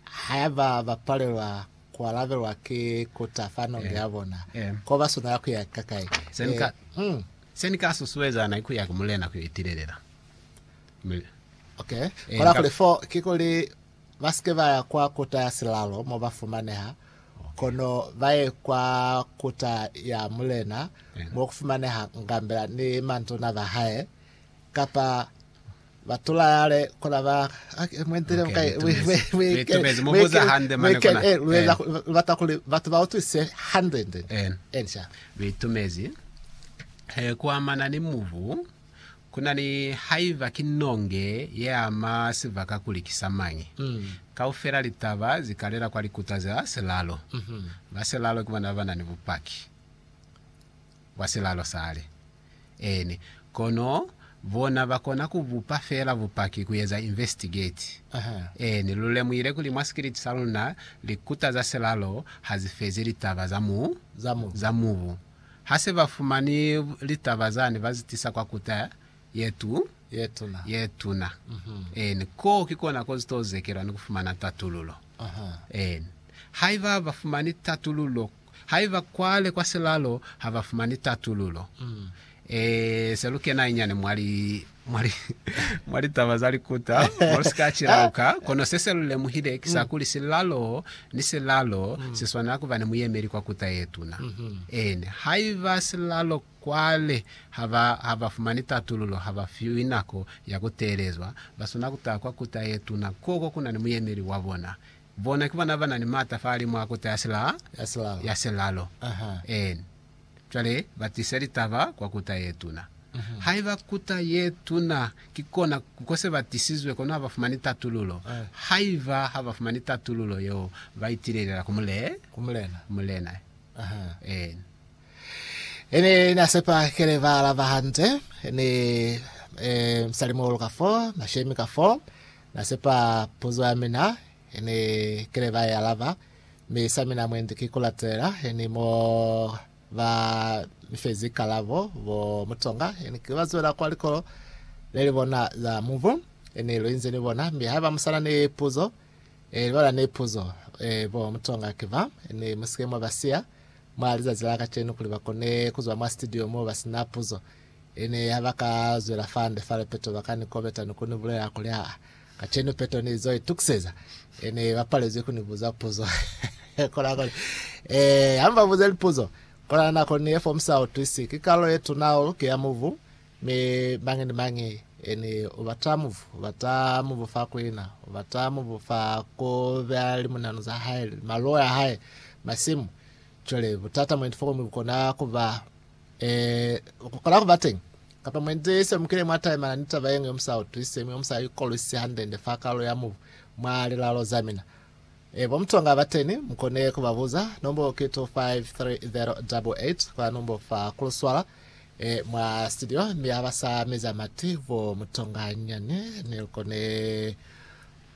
Haiba ba palelwa ku alabelwa ki kota fa nonge ya bona, ko ba swanela ku ya kakai? Se ni ka susueza na ki ku ya ku Mulena ku yo itilelela. Kola kuli, fo kikuli ba si ke ba ya kwa kota ya silalo mo ba fumaneha, kono ba ye kwa kota ya Mulena mo ku fumaneha ngambela ni mantona ba hae, kapa Ba tula yale kona ba mwendele Okay, bukai litubezi. Litubezi, mu buza hande mane kona. Eh. lubata kuli batu ba utwise hande nde Eh. ensha Bitumezi. He, kuamana ni mubu, kuna ni haiba ki nonge ye ama sibaka kuli ki sa mañi. Kaufela litaba zi kalela kwa likuta za silalo. Ba silalo ki bona baba na ni bupaki. Kwa silalo sale, eeni. Kono bona bakona kubupa feela bupaki, kueza investigate. Eeni, lulemuhile kuli mwa sikiliti saluna, likuta za silalo hazifezi litaba za mu, za mubu. Hase bafumani litaba zani, bazitisa kwa kuta yetu, yetuna. Eeni, koo ki kona kozito zekelwa ni kufumana tatululo. Eeni. Haiba bafumani tatululo Haiba kwale kwa silalo ha ba fumani tatululo, e se lu kena inyani mwa li, mwa li, mwa litaba za likuta mo lu si ka cilauka. Kono se se lu lemuhile ki sa kuli silalo ni silalo si swanela ku ba ni muyemeli kwa kuta ye tuna. Eeni, haiba silalo kwale ha ba, ha ba fumani tatululo, ha ba fiwi nako ya ku teelezwa, ba swanela ku taha kwa kuta ye tuna, koko ku na ni muyemeli wa bona. Bona ki bona bana ni mata fale mwa kota ya silaa ya silalo. En. Cwale ba tisa litaba kwa kota ye tuna. Haiba kota ye tuna ki kona ko se ba tisizwe, kono ha ba fumani tatululo. Haiba ha ba fumani tatululo yeo, ba itilelela ku mulena. En. Ene ne a sepa kele ba alaba hande, ni, eh, Msalimo luka fo, mashemi ka fo, Na sepa puzo ya mina, ini kile ba i alaba, mi sa mina mwendi ki kulatela, ini mo ba mi fezi kalabo bo mutonga, ini ki ba zwela kwa likolo le li bona za mubu, ini lu inzi ni bona, mi haiba musana ni puzo, e libala ni puzo, e bo mutonga ki ba, ini musike mwa ba siya mwa lizazi la kacenu kuli ba kone kuzwa mwa studio mo ba sina puzo. Ene ha ba ka zwela fande fale peto ba ka ni kobeta ni ku ni bulela kuli, Aa, kacenu peto ni zo itukiseza. Ene ba palezwi ku ni buza puzo. Kola kuli, Ee, ha mu ba buze lipuzo. Kola nako ni ye fo mu sa utwisi. Ki kalulo ye tuna hahulu ki ya mubu, mi mañi ni mañi ene u bata mubu. U bata mubu fa ku ina. U bata mubu fa ku beya limunanu za hae, maluo a hae, masimu. Cwale butata mwendi fo mubu kona ku ba Ee, ku kona ku ba teñi. Kapa mwendi ne ni semukile mwa taimana ni taba yeñwi yo mu sa utwisiseñi, yo mu sa ikolwisisi hande-nde fa kalulo ya mubu mwa lilalo za mina. Ee, bo mutonga ba teñi, mu kone ku ba buza. Nombo ki 253088, kwa nombo fa ku luswala, ee, mwa situdio, mi ha ba sa meza mati, bo mutonga nyani, ni lu kone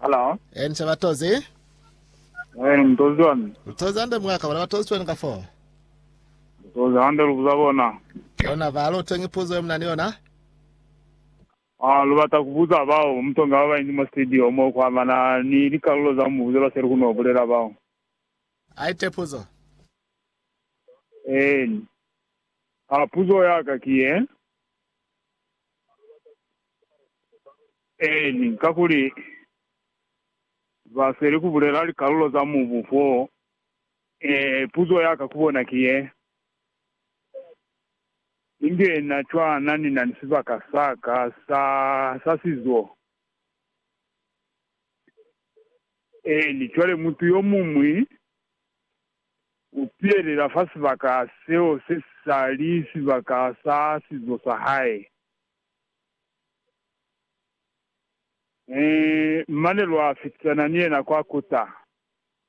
Hello. Eh, ni se ba tozi? Eh, ni tozi wani. Ni tozi hande mwaka, bona ba tozi twenu ka foo. Ni tozi hande lubuza bona. Bona ba lu tengi puzo yo muna ni yona. Ah, lu bata kubuza bao mutonga ba bainzi mwa studio mo ku amana ni likalulo za mubuzo lwa seli ku no bulela bao. A ite puzo. Eh, ni. Ah, puzo ya ka ki ye. Eeni, kakuli ba sweli ku bulela likalulo za mubu foo. Ee, puzo ya ka ku bona ki ye, Inge na cwana ni na ni sibaka sa ka sa, sa sizo? Eeni, cwale mutu yo muñwi. u pihelela fa sibaka seo se sa li sibaka sa sizo sa hae. Mane lwa fitisana ni yena kwa kota,